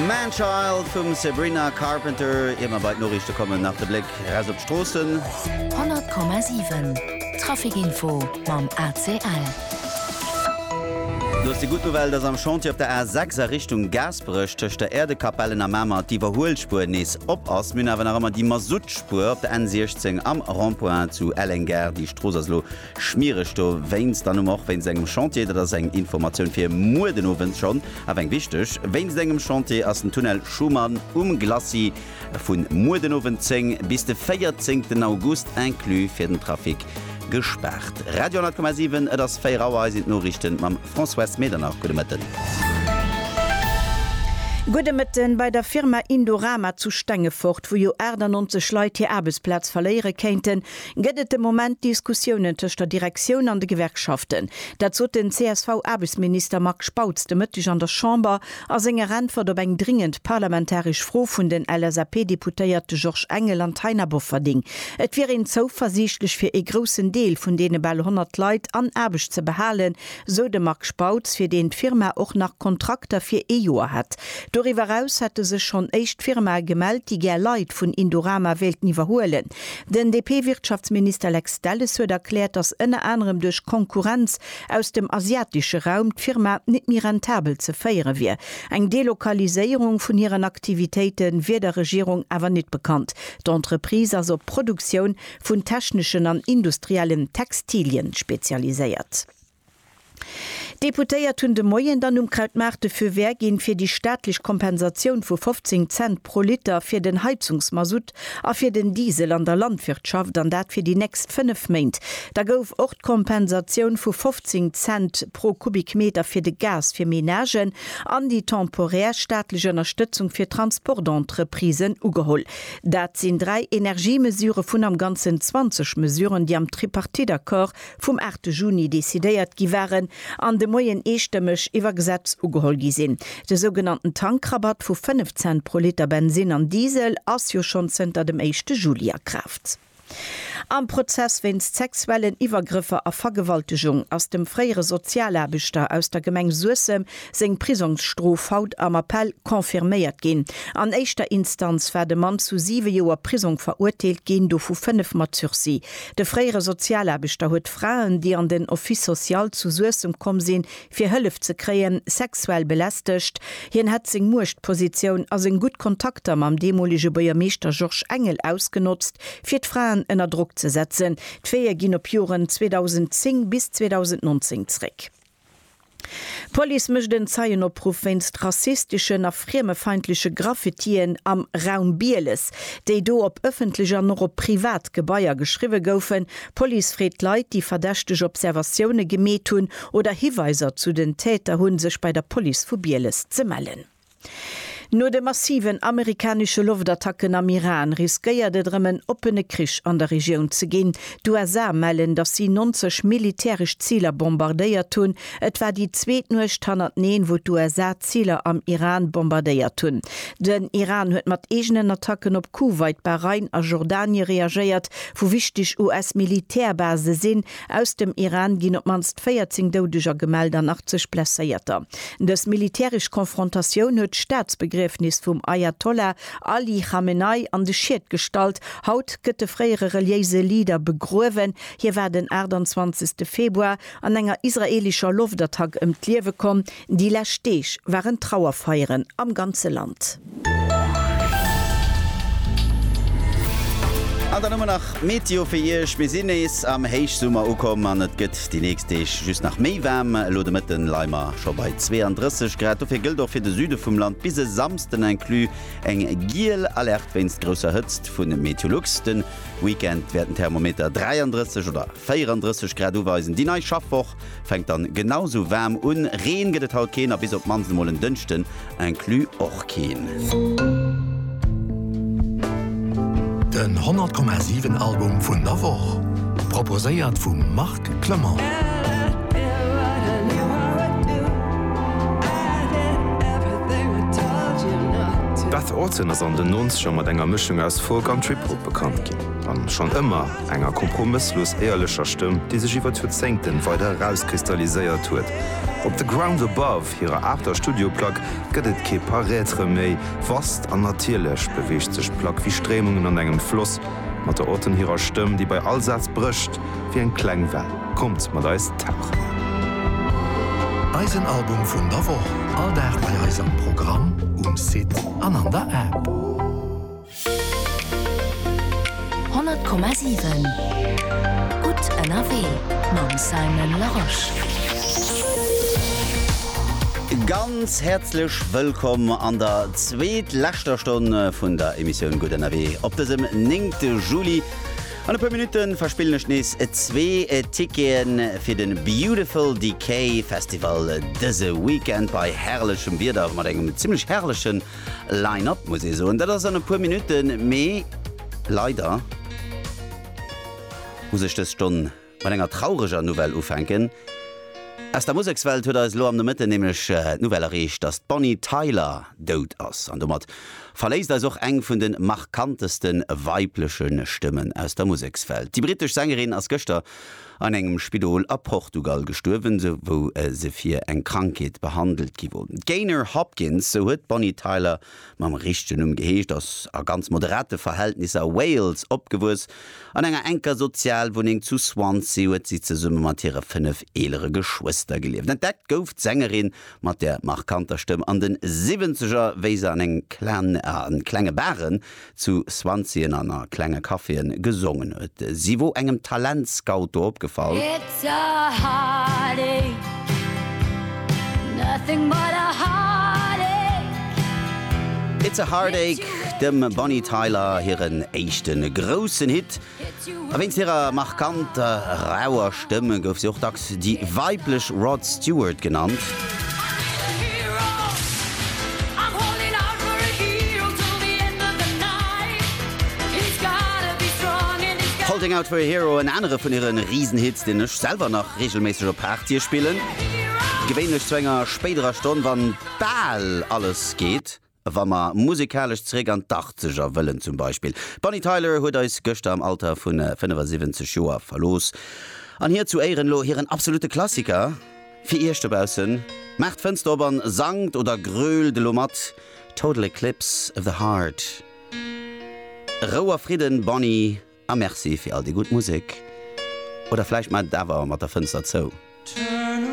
Man Child vum Sabrina Carpenter. Ier mer bei d'Noriichte kommen, nach de Bléck eraus op d'Stroossen. 100,7 Trafic Info mam ACL. Do ass déi gutt Nouvelle, dass am Chantier op der A 6 a Richtung Gaasperech tëscht der Äerdekapellen a Mamer d'Iwwerhuelspuer nees op ass. Mir hunn awer nach ëmmer déi Masuttspuer op der N 16 am Rond-point zu Elleng-Gare. Déi Strooss ass elo Schmiereg dowéinst an um och wéinst engem Chantier. Dat ass eng Informatioun fir muer den Owend schonn, awer eng wichteg. Wéinst engem Chantier ass den Tunnel Schuman um Glacis vu muer den Owend 10 bis de 14 August inclus fir den Trafic gespaart. Radio 10,7, et ass 4 Auer, hei sinn d'Noriichten mam Françoise Medernach. Gudde Mëtten. Gudde Mëtten. Bei der Firma Indorama zu Stengefort, wou jo 98 Leit hir Aarbechtsplaz verléiere kéinten, Gëtt et de Moment Diskussiounen tëscht der Direktioun an de Gewerkschaften? Dat sot den CSV-Aarbechtsminister Marc Spautz de Mëtteg an der Chamber a senger Äntwert op eng dringend parlamentaresch Fro vun den LSAP-Deputéierte Georges Engel an Taina Bofferding. Et wier een zouversiichtlech fir ee groussen Deel vun deene bal 100 Leit an Aarbecht ze behalen, sou de Marc Spautz, fir deen d'Firma och nach Kontrakter fir ee Joer hätt. Doriwwer eraus hätte sech schonn éischt Firmae gemellt, déi gär Leit vun Indorama wéilten iwwerhuelen. Den DP-Wirtschaftsminister Lex Delles huet erkläert, datt ënner anerem duerch Konkurrenz aus dem asiatesche Raum d'Firma net méi rentabel ze féiere wier. Eng Delokaliséierung vun hiren Aktivitéite wier der Regierung awer net bekannt. D'Entreprise ass op d'Produktioun vun techneschen an industriellen Textilien spezialiséiert. D'Deputéiert hunn de Moien dann um Krautmaart de Feu vert ginn, fir déi staatlech Kompensatioun vu 15 Cent pro Liter fir den Heizungsmasutt a fir den Diesel an der Landwirtschaft, an dat fir déi nächst fënnef Méint. Da gouf och d'Kompensatioun vu 15 Cent pro Kubikmeter fir de Gas fir Menagen an déi temporär staatlech Ënnerstëtzung fir Transportentreprisen ugeholl. Dat sinn dräi Energiemesure vun am Ganzen 20 Mesuren, déi am Tripartite-Accord vum 8 Juni decidéiert gi waren an de Moien eestëmmeg iwwer Gesetz ugeholl gi sinn. De sougenannten Tankrabatt vu 5 Cent pro Liter Bensin an Diesel ass jo schonn zënter dem éischte Juli a Kraaft. Am Prozess wéinst sexuellen Iwwergrëffer a Vergewaltegung ass dem fréiere Sozialaarbechter aus der Gemeng Suessem seng Prisongsstrof haut am Appell confirméiert ginn. An éischter Instanz war de Mann zu siwe Joer Prisong verurteelt ginn, dovu fënnef mat Sursis. De fréiere Sozialaarbechter huet Fraen, déi an den Office social zu Suessem komm sinn, fir Hëllef ze kréien, sexuell belästegt. Hien hätt seng Muechtpositioun a seng gutt Kontakter mam deemolege Buergermeeschter Georges Engel ausgenotzt, fir d'Fraen ënner Drock ze setzen. D'Faite ginn op Joren 2010 bis 2019 zréck. D'Police mécht en Zeienopruff wéinst rassisteschen a friemefeindleche Graffitien am Raum Bieles, déi do op ëffentlech an och op privat Gebaier geschriwwe goufen. D'Police freet Leit, déi verdächteg Observatioune gemeet hunn oder Hiweiser zu den Täter hunn, sech bei der Police vu Bieles ze mellen. No de massiven amerikanesche Loftattacken am Iran riskéiert et erëm en oppene Krich an der Regioun ze ginn. D'USA mellen, datt si 90 militäresch Ziler bombardéiert hunn. Et war déi zweet Nuecht hannerteneen, wou d'USA Ziler am Iran bombardéiert hunn. Den Iran huet mat eegenen Attacken op Kuwait, Bahrain a Jordanie reagéiert, wou wichteg US-Militärbasen sinn. Aus dem Iran ginn op d'mannst 14 Doudeger gemellt an 80 Blesséierter. Dës militäresch Konfrontatioun huet d'Staatsbegriefnis vum Ajatollah Ali Khamenei an de Schiet gestallt. Haut gëtt de fréiere reliéise Leader begruewen. Hie war den 28. Februar an enger israeelescher Loftattack ëm d'Liewe komm. Déi lescht Deeg waren Trauerfeieren am ganze Land. An dann hu mer nach Meteo fir Iech, Mir sinn nees am Héichsummer ukomm an et gëtt déi nächst Deeg just nach méi waarm. Elo de Mëtten leie mer scho bei 32 Grad. Dofir gëllt och fir de Süde vum Land bis e Samsden inclus eng giel Alerte wéinst grousser Hëtzt vu Meteolux. De Weekend wäerten d'Thermometer 33 oder 34 Grad uweisen. Déi nei Schaffwoch Fänkt dann genau sou waarm un. Reen gëtt et haut keen a bis op d'mannst emol en Dënschden inclus och keen. Den 100 Komma 7 Album vun der Woch, proposéiert vum Marc Clement. D'Beth Orton ass an den Nonzeger mat enger Mëschung aus Folk an Trip-Hop bekannt ginn, an schonn ëmmer. Enger kompromësslos éierlecher Stëmm, déi sech iwwer d'Joerzéngten weider erauskristalliséiert huet. Op The Ground Above, hirer aachter Studioplack, gëtt et kee Paraître méi. Vast an natierlech beweegt sech d'Plack wéi Stréimungen an engem Floss, mat der Auton hirer Stëmm, déi bei all Saz brécht wéi eng kleng Well. Kommt mat eis tauchen! Eisen Album vun der Woch, all Dag bei eis am Programm, um Site an an der App. 100,7 Gutt ënnerwee mam Simon Larosche. Ganz häerzlech wëllkomm an der zweetleschter Stonn vun der Emissioun Gutt ënnerwee op dësem néngte Juli. An e puer Minutte verspillen ech nees zwee Ticketen fir de Beautiful Decay Festival dëse Weekend bei herrlechem Wieder mat engem zimmlech herrlechen Line Up muss ee soen. Dat ass an e puer Minutten, mee leider muss ech dës Stonn mat enger traureger Nouvelle ufänken. Aus der Musekswelt huet eis elo am Nomëtten nämlech d'Nouvelle erreecht, datt d'Bonnie Tyler dout ass. An domat verléisst eis och eng vun de markanteste weibleche Stëmmen aus der Musekswelt. Déi brittesch Sängerin ass gëschter an engem Spidol a Portugal gestuerwen, wou se fir eng Krankheet behandelt gi wor. D'Gaynor Hopkins, sou huet d'Bonnie Tyler mam richtegen Numm geheescht, ass a ganz moderate Verhältnisser a Wales opgewuess. An enger enker Sozialwunneng zu Swansea huet si zesumme mat hire fënnef eelere Geschwëster gelieft. Entdeckt gouf d'Sängerin mat der markanter Stëmm an de Siwwenzeger, wéi se an engem klenge Baren zu Swanzien an a klenge Caféen gesongen huet. Si wor engem Talentscout do opgefall. It's a heartache, nothing but a heartache. It's a Heartache, dem Bonnie Tyler hiren éischte groussen Hit. A wéinst hirer markanter, rauer Stëmm gouf si och dacks déi weiblech Rod Stewart genannt. Holding Out For A Hero, en anere vun hire Risenhits, deen ech selwer nach reegelméisseg op Partye spillen, gewéinlech zu enger spéiderer Stonn, wann bal alles geet. Wa mer musekalesch zeréck an d'Achtzeger wëllen zum Beispill, d'Bonnie Tyler huet eis gëschter am Alter vu 75 Joer verlooss. An hir zu Éieren elo hiren absolute Klassiker fir iech dobaussen, maacht d'Fënster op an sangt oder grölt elo mat, Total Eclipse of the Heart. Rou a Fridden, Bonnie, a Merci fir all déi gutt Musek. Oder vläicht maacht et awer mat der Fënster zou.